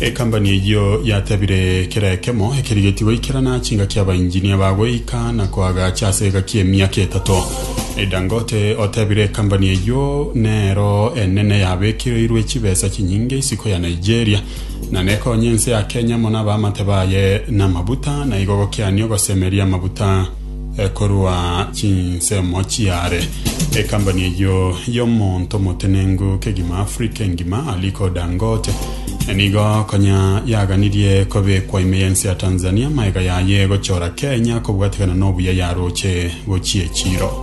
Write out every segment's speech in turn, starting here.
Ekambani eyio yatebire kera ekemo ekerigetie goikerana chingaki abainjinia ba goika na koagacha ase egaki emiaka etato. Dangote otebire ekambani eyio nero enene yabekereirwe chibesa chinyinge isiko ya Nigeria na nekonye ense ya Kenya mono abaamate baye namabuta na igo gokiani ogosemeria amabuta eh, korwa chinsemo chiare. Ekambani eyio y'omonto omotenenku kegima Afrika engima Aliko Dangote eh, nigo konya yaganirie kobekwa ime y'ense ya Tanzania amaega yaye egochora Kenya kobwatekana n'obuya yaroche gochia echiro.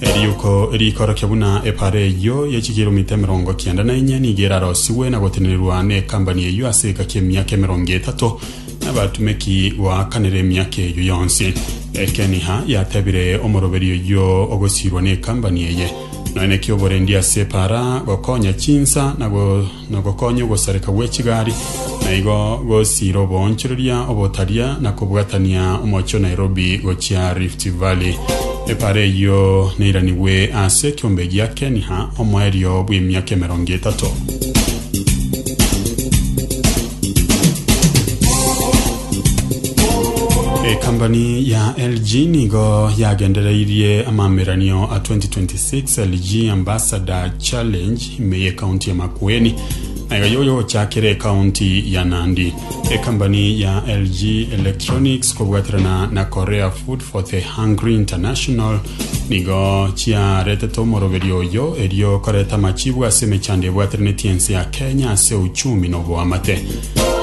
Eriuko riikorokia buna epaara eyio ye chikiromita emerongo kianda na inye nigo erarosigwe na gotenenerwa n'ekambani eyio ase egaki emiaka emerongo etato, n'abatumeki goakanera emiaka eyio yonsi. Ekeniha yatebire omoroberi oyio ogosiirwa n'ekambani eye, Noe naki oborendi ase epaara gokonya chinsa na go nogokonya ogosareka gwe chigari, na igo gosiira oboonchoreria obotaria na kobwatania omochie o Nairobi gochia Rift Valley. Epaara eyio neiranigwe ase ekeombe gia Keniha omoerio bw'emiaka emerongo etato. Ekambani ya LG nigo yagendereirie amameranio a 2026 LG Ambassador Challenge Ime y'ekaunti ya Makueni nayo yoyochakire ekaunti ya Nandi. Ekambani ya LG Electronics kobwaterana na Korea Food for the Hungry International nigo chiaretete omoroberio oyo erio koreta amachibu ase emechando ebwateraneti ense ya Kenya ase uchumi na oboamate.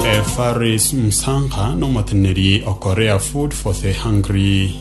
E, Faris Msangha n'omoteneneri o Korea Food for the Hungry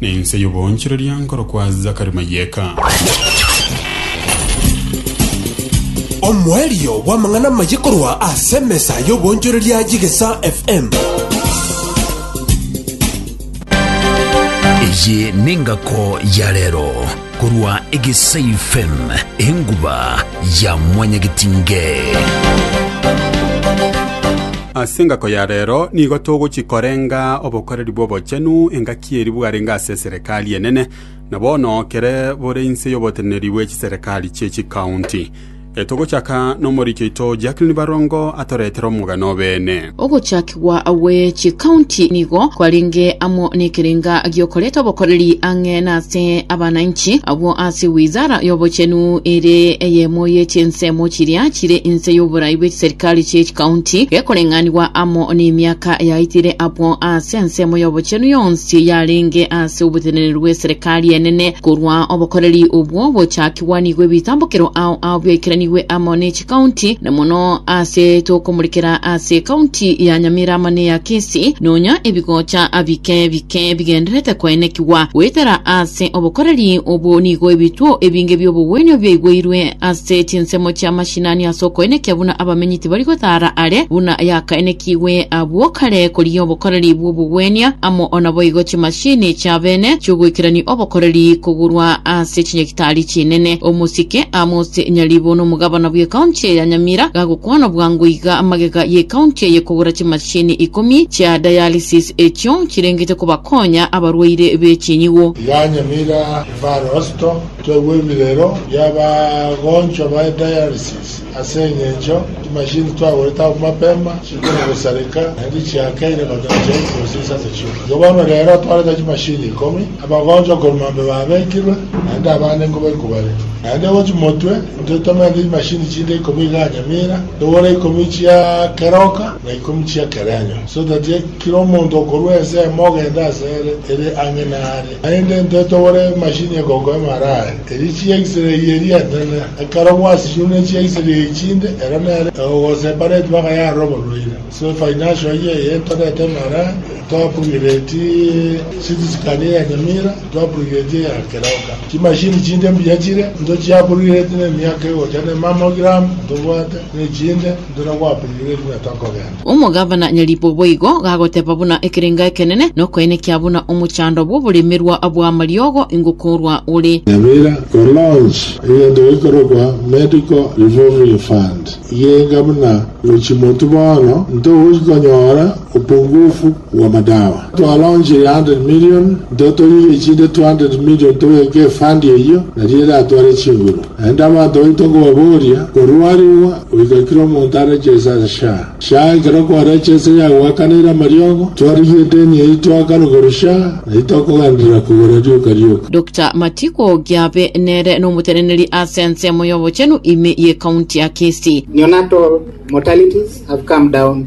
Nense y'oboonchoreria nkorokwa Zakari Mayeka. Omoerio bw'amang'ana amaye korwa ase emesa y'oboonchoreria y'Egesa FM. Eye nengako ya rero. Korwa Egesaifm, enguba ya mwanyagetinge. Ase engako ya reero nigo togochia korenga obokoreri bw'obochenu, engaki eria bwarenge ase eserekari enene, na bono kere bore inse y'oboteneneri bwe chiserekari chie chikaunti. Togochaka nomoricho oito Jacqueline Barongo atoretere omogano obeene. Ogochakigwa gwe chikaunti nigo kwarenge amo nekerenga giokoreta obokoreri ang'e nase abananchi. Agwo ase Wizara y'Obochenu ere eyemo ye chinsemo chiria chire inse y'oborai bwe chiserikali chie chikaunti gekoreng'anigwa amo nemiaka yaitire abwo ase ensemo y'obochenu yonsi yarenge ase oboteneneri bw'eserekari enene korwa obokoreri obwo bochakigwe. Twanigwe ebitambokero ao ao biaikeranigwe amo ne chikaunti, na mono aase tokomorekera aase ekaunti ya Nyamira amo ne ya Kisi, nonya ebigocha bike bike bigenderete koenekigwa goetera aase obokoreri obwo nigo ebituo ebinge bi'obogwenio biaigweirwe ase chinsemo chi'amashinani ase okoenekia buna abamenyi tibari gotaara are buna yakaenekigwe abwo kare korigia obokoreri bw'obogwenia amo onaboigo chimashini chiabene chiogoikerania obokoreri kogurwa ase Ase chinyagitari chinene, omosike Amos Nyaribo na omogabana bw'ekaunti eye ya Nyamira gagokwana bwango iga amagega y'ekaunti eye kogora chimashini ikomi chia dialysis echio chirengete kobakonya abarwaire be chinyigo. ya Nyamira Referral Hospital, twegwebire ero y'abagonchwa baye dialysis. Ase engencho chimashini twagorete abwo mapema chikona gosareka naende chiakeire gotoba chiaye chionsi ase amachiko. Igo bono rero atwarete chimashini ikomi, abagonchwa korwa mambia babekirwe, naende abande nigo baikwa bare. Naende gochia motwe intwe tomerete chimashini chinde ikomi igaa Nyamira, togore ikomi chia keroka na ikomi chia kerenyo, so that kera omonto okorwa ensemo ogende asere ere ang'e nare. Naende intwe togore emashini egokoema arare. Erio chi'Aisraeli eria enene ekarogwa ase chionda chi'Aisraeli echinde, ero nere ogosesa Epareti bakayara oborwaire. Ase efaini asho ayio eyento reta emara twapurigeti city scan ya Nyamira, twapurigeti eya Keroka. Chimashini chinde mbuya chire, intwe chiapurigeti nemiaka egocha ne mamogram ntobwate, nechinde. Buna gwabeire egwete okogenda. Omogabana nyaribo boigo gagoteba buna ekerengo ekenene, na okoenekia buna omochando bw'oboremerwa bw'amariogo ingokorwa ore. Nyabira ko launch egento gekorokwa Medical Revolving Fund, igenga buna gochia motu bono ntogochi konyora opungufu bw'amadawa. Twaronchirie hundred million, ntotoirie chinde two hundred million tobeke efund eyio, nario eratware chinguru. Naende abanto baito nkobaboria, korwa arigwa goika kera omonto arechese ase sha. Sha ekero kwarechese yagoakanaire amariogo, twarigia edeni eyio twaakana korwa sha, na titokogenderera kogora rioka rioka. Doctor Matiko Giabe nere nomoteneneri ase ensemo y'obochenu ime y'ecounty ya Kisii. Neonatal mortalities have come down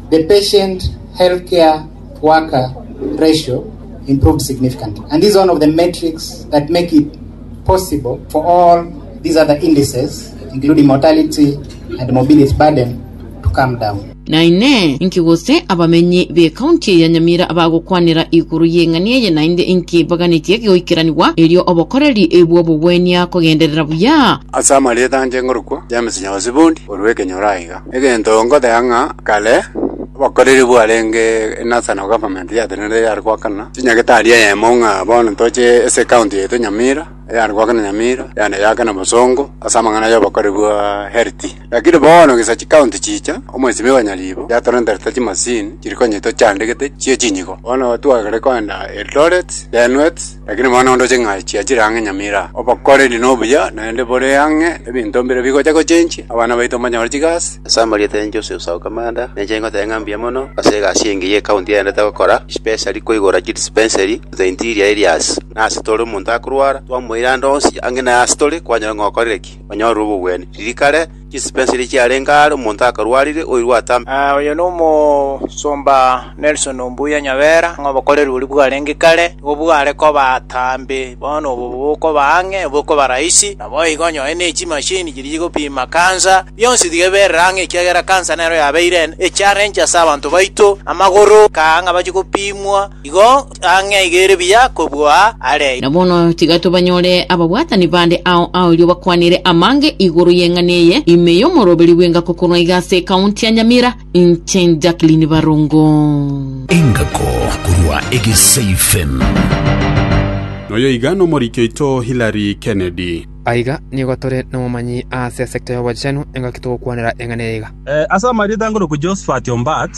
The patient healthcare worker ratio improved significantly and this is one of the metrics that make it possible for all these other indices including mortality and morbidity burden to come down. Na inee, inki gose abamenyi b'ecounty eye ya Nyamira abagokwanera igoro y'eng'ani eye, naende inki baganetie egegoikeranigwa erio obokoreri bw'obogwenia kogenderera buya? Ase amarieta anche ngorokwa, James Nyaosi Bondi, orw'ekenyoro aiga. Egento nkoteba ng'a kare obokoreri bwarenge in national government yatenenete yare goakana chinyagetari eyemo ng'a bono ntoche ase ekaunti yaito nyamira, eyare goakana nyamira, eyande yaakana bosongo ase amang'ana ya obokoreri bwaaaa health. Lakini bono gesa chikaunti chicha, omwesimi o nyaribo yatorenterete chimasini chiri konyetocha ndegete chia echinyigo. Bono tware koenda Eldoret, Denuet. Lakini bono onde oche ng'a chiachire ang'e nyamira, obokoreri nobuya, naende bore ang'e, ebinto mbire bigocha gochenchia, abana baito mbanyore chigasi. Ase amarieta ya Jose Usau Kamanda, ninche ngoteba ng'a mbuya mono ase egasi engiya ecounty yaendete gokora, especially koigora chidispensary to the interior areas. Na ase tore omonto akorwara, twamoira ande onsi ang'e naye ase tore kwanyora ng'a okorire ki, onyorire obobwene. Riria kare, Chispensili chiarenge aare omonto akarwarire, oirwe atambe. Oyo nomosomba Nelson Ombuya Nyabera, ng'a obokoreri boria bwarenge kare nigo bware koba atambe, bono obo bokoba ang'e bokoba rahisi. Naboigo onyore ne chimashini chiria chigopima cancer, bionsi tiga eberere ang'e ekiagera cancer nero yabeire echarenche ase abanto baito, amagoro kaa ng'a bache gopimwa igo. ang'e aiga ere buya kobua are. Na bono tiga tobanyore ababwatani bande ao aorio bakwanire amange igoro y'eng'ana eye ime y'omoroberio bw'engako korwa iga ase ekaunti ya Nyamira, inche Jacqueline Barongo. Engako korwa Egesaifen. Na oyo iga nomoriki oito Hillary Kennedy. Aiga nigo tore nobomanyi aase esekta y'obochenu, engaki togokwanera eng'ana eye iga. Ase amarieta ngoruku Josphat Ombat.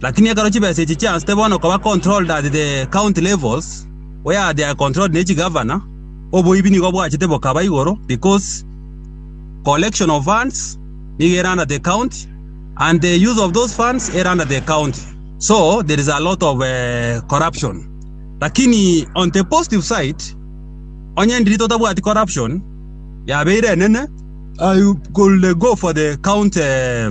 Lakini ekero chibesa echi chiansete bono koba controlled at the county levels where they are controlled ne chigavana, oboibi nigo bwachete bokaba igoro because collection of funds nigo ere under the county and the use of those funds ere under the county so there is a lot of eh, corruption. Lakini on the positive side onye ndiri totabwati corruption yabeire enene I could go for the county eh,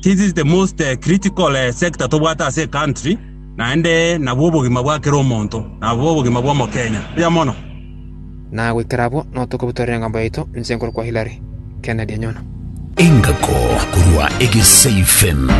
This is the most eh, critical eh, sector tobwate ase ecountry naende nabwo obogima bwa kera omonto nabwo obogima bwa omokenya buya mono. Na goikera abwo no tokobutorera engambo yaito inse nkoro kwa Hillary Kennedy Anyono. Engako korwa Egeseifen.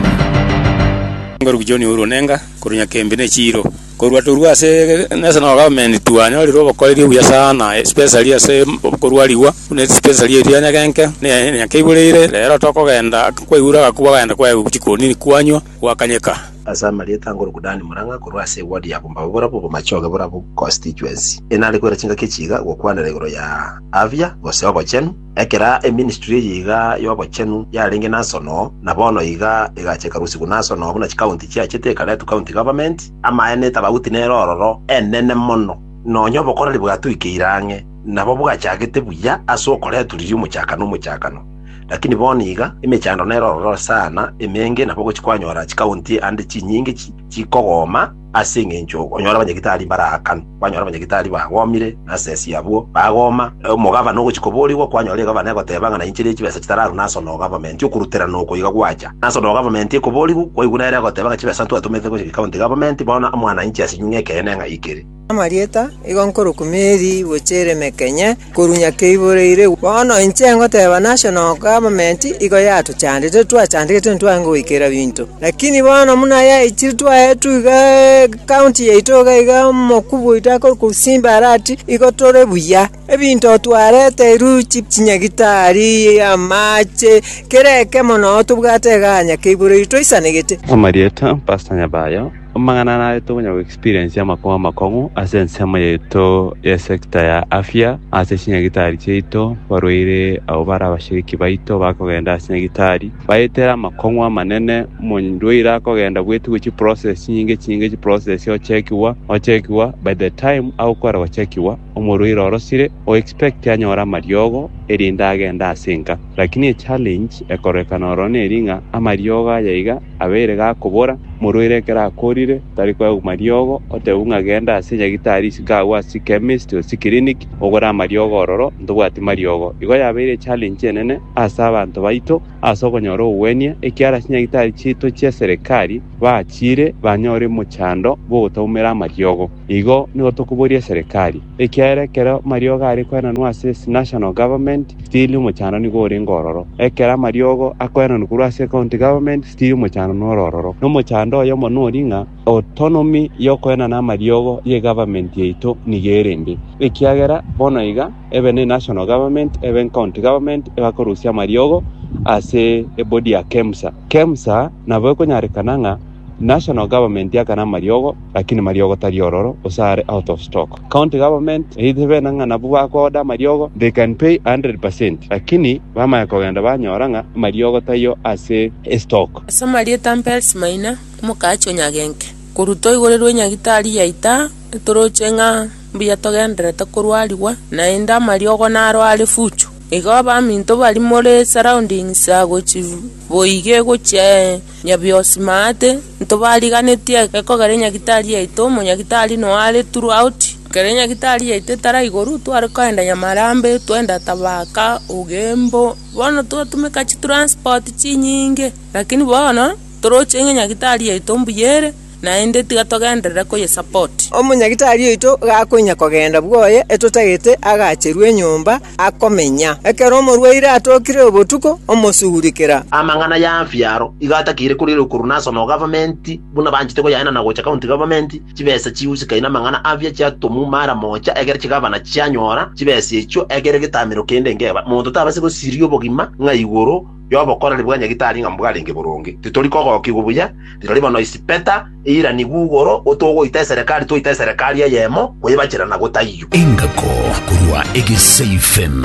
Ngoruki John Uhuru Onenga korwa Nyakembe ne Chiro. Korwa torua ase ase na government twanyorire obokoreria obuya sana especially ase korwa rigwa buna especially erio ya nyagenke na ya nyakenke ibureire rero tokogenda kwaigure agakuba kwagenda kwaegwa chikoni kwanywa gwakanyeka. Ase amarieta a Ngoroku Dan Murang'a korwa ase eward ya Bumbabu borabwo Bomachoge borabwo constituency, enare koira chingaki chiiga gokwanera igoro ya afya gose ogochenu, Ekera eministry eye iga y'obochenu yarenge nanso no, na bono iga egacha ekarusigwa nanso no buna chikaunti chiachete ekaretwa county government, amaene tabauti nere ororo enene mono, nonya obokoreri bwatuikeire ang'e nabo bwachagete buya ase okoretwa riria omochakano omochakano. Lakini bono iga emechando nere ororo sana, emenge, nabo gochi kwanyora chikaunti ande chinyinge chi chikogoma, Ase engencho okonyora abanyagitari mbaraakanu, kwanyora abanyagitari bagomire, na ase ense abwo bagoma. Omogabana ogochia koborigwa, kwanyora egavana egoteba ng'a naincherie chibesa chitararu naso no government, okuruterana oko iga gwacha. Naso no government ekoborigwa, kwaigwa nere egoteba ng'a chibesa ntwatomete gochia county government, bono mwananchi ase nyung'u ekeene ng'ai kere. Amarieta, igo nkorokwa Mary gochia Eremekenye. korwa nyakera iboreire. Bono inche ngoteba nasho noka amamenti igo yatochandete, twachandegete ntitware goikera binto. Lakini bono buna yaikire twaetwe iga ekaunti yaito iga iga omokubwa oito akore kosimba are ati, igo tore buya. Ebinto twareterwe chinyagitari, amache, kera ekemo nao tobwate igaa nyakera iboreire toisanegete. Amarieta, Pastor Nyabayo. Amang'ana aya narete onye go experience amakubo amakong'u ase ensemo yaito ye sector ya afya ase chinyagitari chiaito barwaire abo bare abashiriki baito bakogenda ase nyagitari bayetere amakong'u amanene omorwaire akogenda bwetigwe chi process chinyinge chinyinge chi process ochekiwa ochekiwa by the time agokwera gochekiwa omorwaire orosire o expect anyore amariogo erinde agende ase enka lakini echallenge ekororekana oro neri ng'a amariogo aya iga Abeire gakobora, Morwaire ekero akorire, tari koegwa mariogo, otebwe ng'a genda ase nyagitari isiko agwo ase chemist gose clinic ogore amariogo ororo ntobwati mariogo. Igo yabeire echallenge enene ase abanto baito ase okonyora obogwenia ekiara ase nyagitari chiaito chia serikali bachire banyore mochando bw'ogotaumera amariogo. Igo nigo tokoboria serikali. Ekiagera ekero amariogo are koenanwa ase ase national government, still omochando nigo orenge ororo. Ekero amariogo akoenanwa korwa ase county government, still omochando nore ororo. Na omochando oyomo nori ng'a autonomy y'okoenana amariogo ye government yaito nigo erende. Ekiagera bono iga ebe ne national government, ebe ne county government ebakorusia amariogo ase ebodi ya KEMSA. KEMSA nabo ekonyarekana ng'a National government yakana amariogo lakini mariogo tari ororo gose are out of stock. County government eite bena ng'a nabwo bako order amariogo they can pay 100 percent lakini bamanya kogenda banyora ng'a amariogo taiyo ase estock. Ase amarieta Mpelsi Maina, omokaachi o Nyagenke, korwa toigorirwe Nyagitari yaita etoroche ng'a mbuya togendererete korwarigwa, naende amariogo naro are fuchu. Igo abaminto bari more surroundings agochi boige gochia Nyabiosmate, ntobariganetie gekogera enyagitari yaito, omonyagitari noyo are throughout, ekero enyagitari yaito etara igoro, tware kogenda Nyamarambe, twagenda Thabaka, Ugembo, bono twatumeka chitransport chinyinge, lakini bono, toroche ng'a enyagitari yaito mbuya ere. naende tiga togenderere koyesupport. Omonyagitari oito gakoinya kogenda bwoye etotagete agacherwe enyomba akomenya. Ekero omorwaire atokire obotuko omosugurikera. Amang'ana ya Afya aro iga atakeire korierwa korwa National Government buna banchete koyaenana gocha County Government, chibesa chihusikainie amang'ana Afya chiatomwa mara mocha ekero chigavana chianyora chibesa echio ekero egetamero kende nkeba. Monto tabase gosiria obogima ng'a igoro y'obokoreri bwa Nyagitari ng'a mbwarenge boronge, titori kogokigwa buya, rirorio bono isipeta eiranigwe igoro, go togoita eserekari twaita eserekari eyemo, koyebachera na gotaiyo. Engako korwa egeseifen.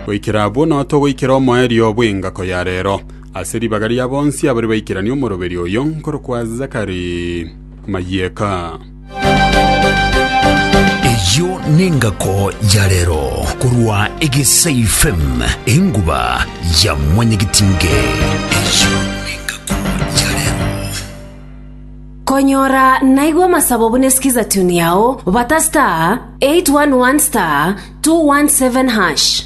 Goikera abwo nao togoikera omoerio bw'engako ya reero, ase ribaga ria bonsi abaria baikerania omoroberio oyo nkorokwa Zachary Mayieka. Eyio nengako ya rero korwa Egesaifem enguba ya mwanyagetinge. Eyio nengako ya rero. Konyora naigwa amasabo buna skiza tune yao bata star 811 star 217 hash.